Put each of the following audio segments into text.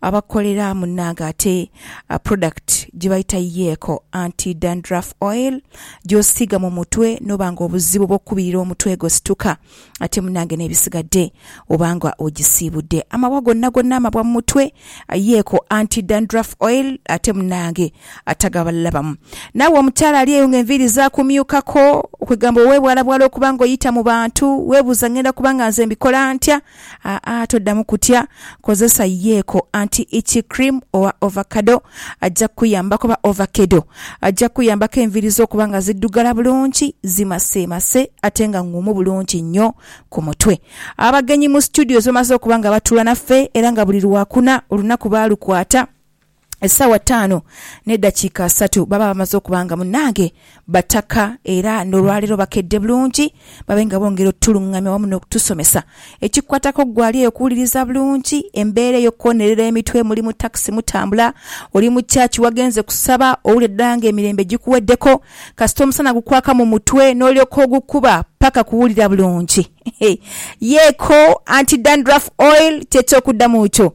abakolera munange ate product gyebayita Yeco anti dandruff oil gyosiiga mu mutwe noba nga obuzibu bwokukubirira omutwe gosituka ate munange nebisigadde oba nga ogisiibudde amabwa gonna gonna amabwa mu mutwe Yeco anti dandruff oil ate munange atagabalabamu naawe omukyala ali eyo nga enviiri zakumyukako kwegamba owebwalabwala okuba nga oyita mu bantu webuuza ngenda kuba nga nze mbikola ntya Aa, toddamu kutya. Kozesa Yeeko Anti-Itchy-Cream owa Ovacado. Ajja kukuyambaku, oba ovakedo. Ajja kukuyambaku enviiri zo okuba nga ziddugala bulungi, zimaseemase ate nga ng'umu bulungi nnyo ku mutwe. Abagenyi mu situdiyo ze bamaze okuba nga batuula naffe era nga buli Lwakuna olunaku baalukwata. Essaawa taanu n'eddakiika asatu baba bamaze okuba nga munnange bataka era n'olwaleero bakedde bulungi babe nga bongera otutulung'amya wamu n'okutusomesa ekikukwatako ggwe ali eyo okuwuliriza bulungi embeera ey'okukonerera emitwe muli mu takisi mutambula, oli mu church wagenze kusaba owulidde ddala nga emirembe gikuweddeko kasita omusana gukwaka mu mutwe n'olyoka ogukuba paka kuwulira bulungi. Yeeko anti dandruff oil ky'ekyokuddamu kyo.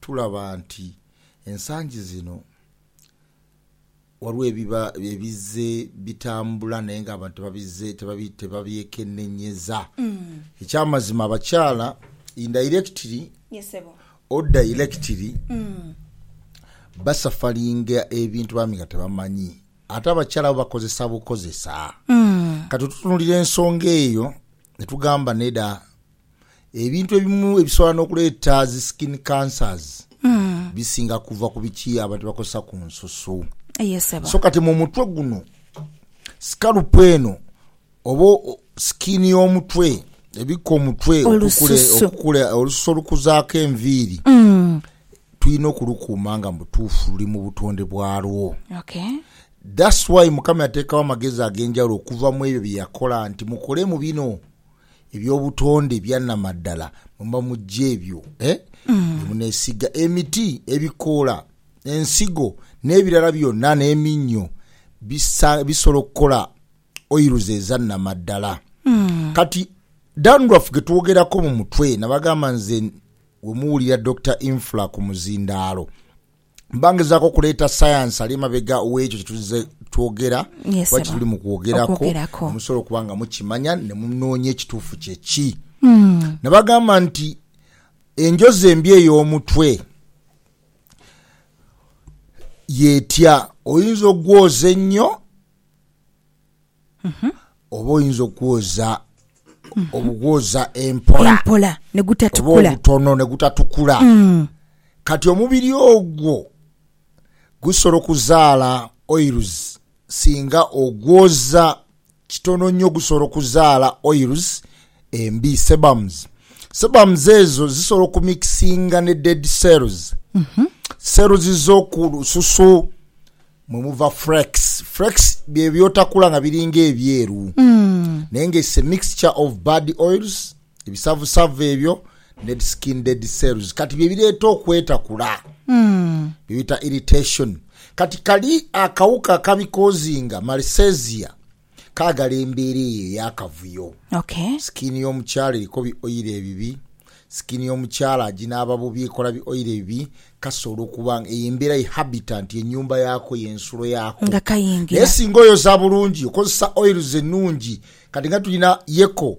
Tulaba nti ensangi zino ghaligho ebiba ebizze bitambula naye nga abantu tebabizze tebabyekenenyeza. Ekyamazima abakyala indairekitiri or dairekitiri basafaringa ebintu bambi nga tebamanyi. Ate abakyala bo bakozesa bukozesa. Kati tutunulira ensonga eyo ne tugamba neda Ebintu ebimu ebisobola n'okuleeta zi skin cancers bisinga kuva ku biki abantu bye bakozesa ku nsusu. Ye ssebo. So kati mu mutwe guno, scalp eno oba skin y'omutwe ebikka omutwe okukule, Olususu. okukule, olususu olukuzaako enviiri, tulina okulukuuma nga mu butuufu luli mu butonde bwalwo. Okay. That's why Mukama yateekawo amagezi ag'enjawulo okuva mu ebyo bye yakola nti mukolemu bino. Eby'obutonde ebya namaddala mwe muba muggya ebyo bye muneesiiga, emiti, ebikoola, ensigo n'ebirala byonna n'eminnyo bisa, bisobola okukola oils eza namaddala. Kati dandruff ge twogerako mu mutwe, nabagamba nze we muwulira Dokita Infra ku muzindaalo. Mba ngezaaku okuleeta sayansi ali emabega w'ekyo kye tuzze twogera Yes, oba kye Sebo. tuli mu kwogeraku, Okwogerako. ne musobola okuba nga mukimanya ne munoonya ekituufu kye ki. Ne bagamba nti, Enjozi embi ey'omutwe y'etya? Oyinza okugwoza ennyo? Oba oyinza okwoza obugwoza empola, empola oba obutono ne gutatukula. Kati omubiri ogwo gusobola okuzaala oils singa ogwoza kitono nyo. Gusobola okuzaala oils embi, sebums. Sebums ezo zisobola okumikisinga ne dead cells, cells z'oku lususu, Mwe muva flex. Flex bye byotakula nga biri nga ebyeru naye nga it's a mixture of bad oils, ebisavusavu ebyo, dead skin, dead cells kati bye bireeta okwetakula bye bita irritation. Kati kali akawuka akabikozinga, Malassezia. Kaagala embeera eyo ey'akavuyo. Ok. Skin y'omukyala eriko bi oil ebibi, skin y'omukyala aginaaba bubi, ekola bi oil ebibi, kasobola okuba nga eyo embeera ye habitant, ye nyumba yaako, ye nsulo yaako. Nga kayingira. Naye singa oyoza bulungi, okozesa oils ennungi, kati nga tulina Yeko,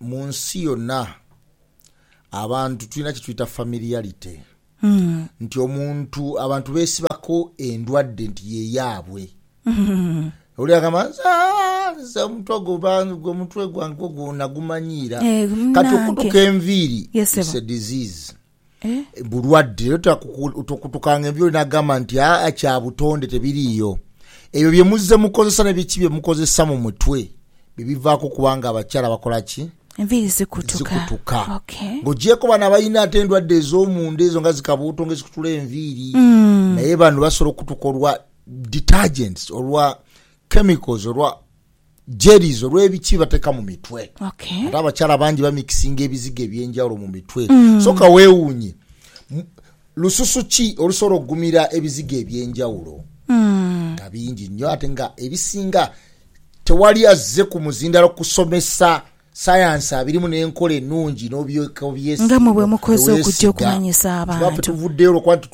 Mu nsi yona abantu tulina kyetweta familiarity nti omuntu abantu besibako endwadde nti yeyaabwe oli agamba nze aah nze omuntu ogwo gwe omutwe gwange ogwo nagumanyiira kati okutuka enviiri it's a disease. Eh? bulwadde era tokutuka nga enviri nagamba nti aa kya butonde tebiriiyo ebyo bye muzze mukozesa ne biki bye mukozesa mu mutwe bye bivaako okuba nga abakyala bakola ki Enviiri zikutuka. zikutuka Okay. ng'ogyeko bano abalina ate endwadde ez'omunda ezo nga zikabuuto nga ezikutula enviiri Mm. naye bano basobola okukutuka olwa detergents olwa chemicals olwa jellies olwebiki bateka mu mitwe okay. ate abakyala bangi bamikisinga ebizigo ebyenjawulo mu mitwe mm. so kawewuunye lususu ki olusobola okugumira ebizigo ebyenjawulo mm. nga bingi nnyo ate nga ebisinga tewali azze ku muzindalo kusomesa Sayansi abirimu n'enkola enungi nga mwe bwe mukoze okugya okumanyisa abantu. Twafe tuvuddeyo lwa kuba nti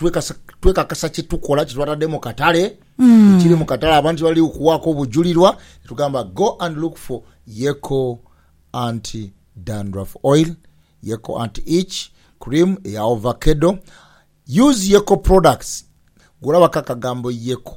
twekakasa kye tukola kye twatadde mu katale, ekiri mu katale abantu kye bali okuwaako obujulirwa ne tugamba go and look for Yeko anti dandruff oil, Yeko anti itch cream eya ovakedo, use Yeko products, gwe olabako akagambo Yeko.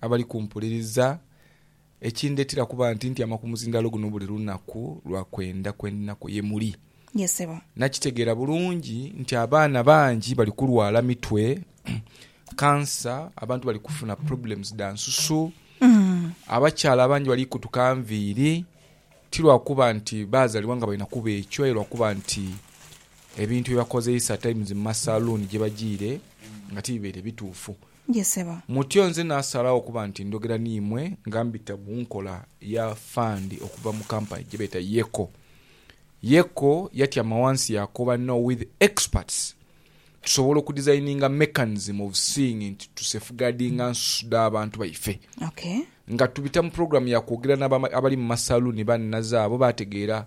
abali kumpuliriza, ekindeetera kuba nti ntyama ku muzindaalo guno buli lunaku lwa kwenda kwe ndina kwo ye muli. Nakitegeera bulungi nti abaana bangi bali kulwala mitwe, kansa, abantu bali kufuna problems dha nsusu, abakyala abangi bali kutuka nviiri, ti lwa kuba nti baazalibwa nga balina kuba ekyo aye lwa kuba nti ebintu bye bakozeisa at times mu masaluuni gye bajiire nga tibibaire bituufu. gye sebo. Mutyo nze naasalagho okuba nti ndhogera n'imwe nga mbita mu nkola ya fund okuva mu company gye beeta Yeko. Yeko yatyama ghansi yaakoba no with experts tusobola okudesigninga mechanism of seeing nti tusefeguardinga nsusu dh'abantu baife. Okay. Nga tubita mu program ya kwogera n'abali mu masaluuni baannaze abo baategeera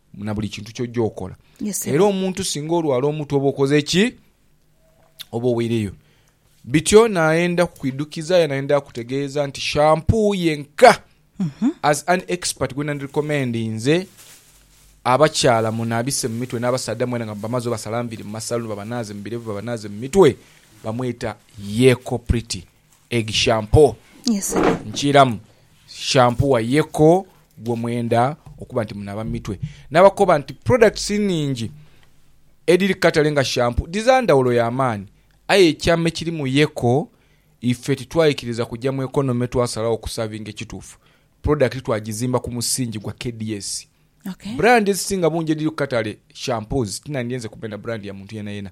na buli kintu ky'ojja okola. Era omuntu singa olwala omutwe oba okoze ki? Oba oweireyo. Bityo naayenda kukwidukiza aye naayenda akutegeeza nti shampoo yenka mhm. as an expert gwe nandirecommendinze abakyala munaabise mu mitwe n'abasaadha mwena nga bamaze obasala nviri mu masaluni babanaaze mu birevu babanaaze mu mitwe bamweta Yeko Pretty. Egg shampoo nkiiramu shampoo wa yeko gwo mwenda okuba nti munaaba mu mitwe. Nabakoba nti products nhingi edhiri ku katale nga shampoo dhiza ndhawulo ya maani aye ekyama ekiri mu yeko ife titwaikiriza kugya mu economy twasalagho okusavinga ekituufu product twagizimba ku musingi gwa KDS. Brand edhisinga bungi edhiri ku katale shampoos tinandyenze kumenha brand ya muntu yenayena.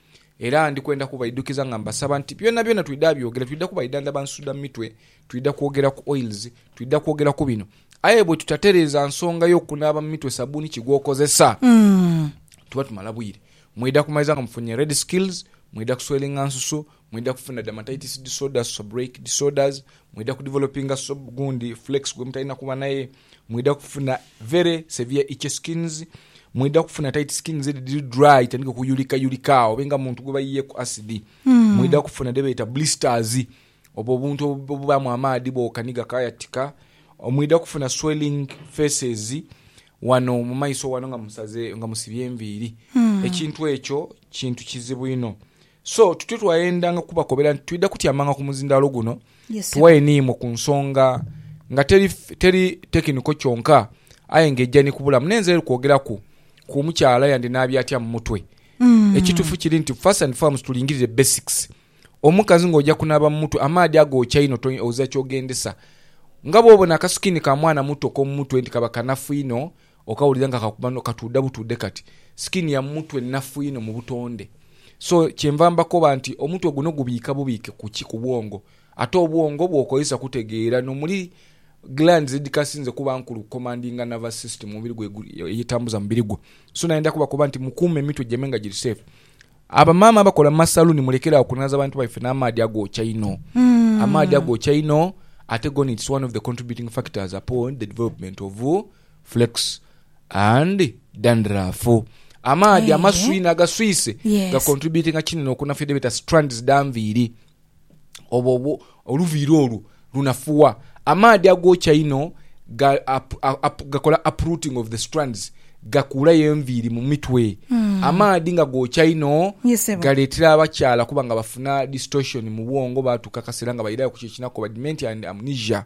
Era ndi kwenda kubaidhukiza nga mbasaba nti byonabyona twidha abyogera, twidha kubaidha nga bansuda mu mitwe, twidha kwogera ku oils, twidha kwogera ku bino. Aye bwe tutatereeza nsonga y'okunaaba mu mitwe sabbuuni ki gw'okozesa, tuba tumala bwire. Mwidha kumaliza nga mufunye red scales, mwidha kuswelinga nsusu, mwidha kufuna dermatitis disorders, seborrheic disorders, Mwidha ku developinga sob gundi flex gwemutalina kuba naye, mwidha kufuna very severe itchy skins, mwidha kufuna tight skins edho edhiri dry etandika okuyulika yulika agho obe nga muntu gwebayiyeku acid, mwidha kufuna dhebeeta blisters obwo obuntu obubaamu amaadhi bwoka ni gakaayatika, mwidha kufuna swelling faces wano mu maiso wano nga musaze nga musibye enviiri. Ekintu ekyo kintu kizibu inho. So tutyo twayendanga kubakobera nti twidha kutyamanga ku muzindaalo guno Yes, ssebo. tuwaye n'imwe ku nsonga nga teri teri tekiniko kyonka aye nga eija ni ku bulamu. N'enze eri kwogeraku ku omukyala yandi n'abi atya mu mutwe. Mm. Ekituufu kiri nti first and foremost tulingirire basics. Omukazi ng'oja kunaaba mu mutwe amaadhi agookya inho to oza ky'ogendesa. Nga bw'obona akasikiini ka mwana muto k'omu mutwe nti kaba kanafu inho, Okawulira nga kakuba no katuudha butuudhe kati. Skin ya mumutwe nnafu inho mu butonde. So kyenva mbakoba nti omutwe guno gubiika bubiike ku ki? Ku bwongo. Ate obwongo bwokozesa kutegeera no muli glands edhikasinze kuba nkulu ku commandinga nervous system omubiri gwo eyetambuza mubiri gwo. So nayendha kubakoba nti mukuume emitwe gyamwe nga giri safe. Abamaama abakola mu masaluuni mulekere agho okunaaza abantu baife n'amaadhi agookya einho. Amaadhi agookya einho ate goona its one of the contributing factors upon the development of flex and dandruff. Amaadhi amaswii n'agaswiise ga contributinga kinene okunafya dhebeeta strands dha nviiri. obwo oluviiri olwo lunafuwa. Amaadhi agookya einho gakola uprooting of the strands, gakuulayo enviiri mu mitwe. Amaadhi nga gookya inho Ye ssebo. galeetera abakyala okuba nga bafuna distortion mu bwongo baatuuka akaseera nga bairayo ku kyekinako, badimenti and amnesia.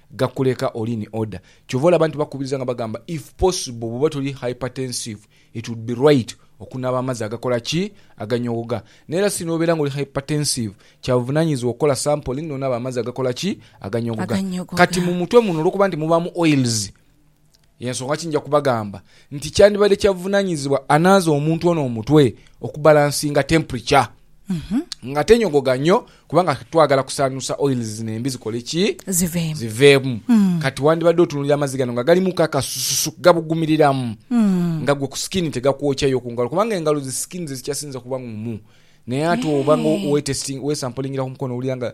gakuleka oli in order kyova olaba nti bakubiriza nga bagamba if possible bwoba toli hypertensive it would be right okunaaba amazzi agakola ki? aganyoogoga naye era singa obeera nga oli hypertensive kyabuvunanyizibwa okukola sampling nonaaba amazzi agakola ki? aganyoogoga kati mumutwe muno olwokuba nti mubaamu oils Y'ensonga ki nja kubagamba nti kyandibadde kya buvunaanyizibwa anaaza omuntu ono omutwe okubalansinga temperature nga tenyogoga nnyo kubanga twagala kusaanuusa oils zino embi zikole ki? Ziveemu. Ziveemu. Kati wandibadde otunuulira amazzi gano nga galimuku akasususu gabugumiriramu nga gwe ku skin tegakwokya yo ku ngalo kubanga engalo zi skin ze zikyasinze kuba ngumu naye ate oba nga Eeh. we testing, wesampulingira ku mukono owulira nga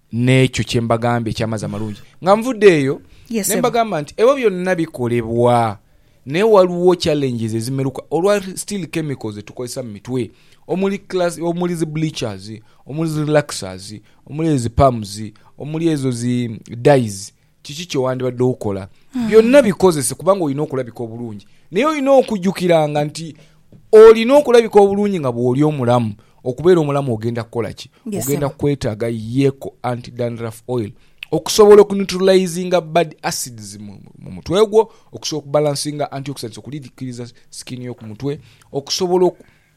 N'ekyo kye mbagambye eky'amazi amalungi. Nga nvudde eyo, Ye ne ssebo. mbagamba nti, ebyo byonna bikolebwa, naye waliwo challenges ezimeruka olwa still chemicals ze tukozesa mu mitwe, omuli class, omuli zi bleachers, omuli zi relaxers, omuli ezo zi perms, omuli ezo zi dyes, Kiki kye wandibadde okola? Byonna bikozese kubanga olina okulabika obulungi. Naye olina okujjukiranga nti olina okulabika obulungi nga bw'oli omulamu. Okubeera omulamu ogenda kukola ki? Yes, ogenda sebo. kwetaaga Yeco Anti-Dandruff Oil okusobola okuneutralizinga bad acids mu mu mutwe gwo, okusobola okubalansinga antioxidants okudidikiriza skin yo ku mutwe, okusobola oku,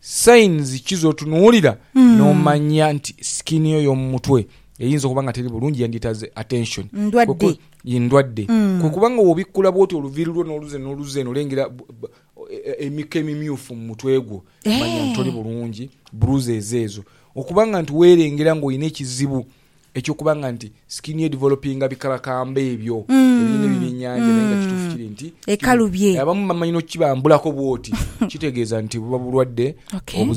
Signs ki z'otunuulira n'omanya nti skin yo y'omu mutwe eyinza okuba nga teri bulungi yandyetaaze attention? Ndwadde. Ye ndwadde. Kwe kuba nga bw'obikkula bw'oti oluviiri lwo n'oluze n'oluze n'olengera emiko emimyufu mu mutwe gwo, manya nti toli bulungi, bruises ezo. Okuba nga nti weerengera ng'olina ekizibu Eky'okuba nga nti skin ye developinga bikalakamba ebyo ebirina ebyeby'enyanja naye nga kituufu kiri nti Ekalu bye. abamu bamanyi n'okukibambulako bw'oti kitegeeza nti buba bulwadde Okay. obuzi.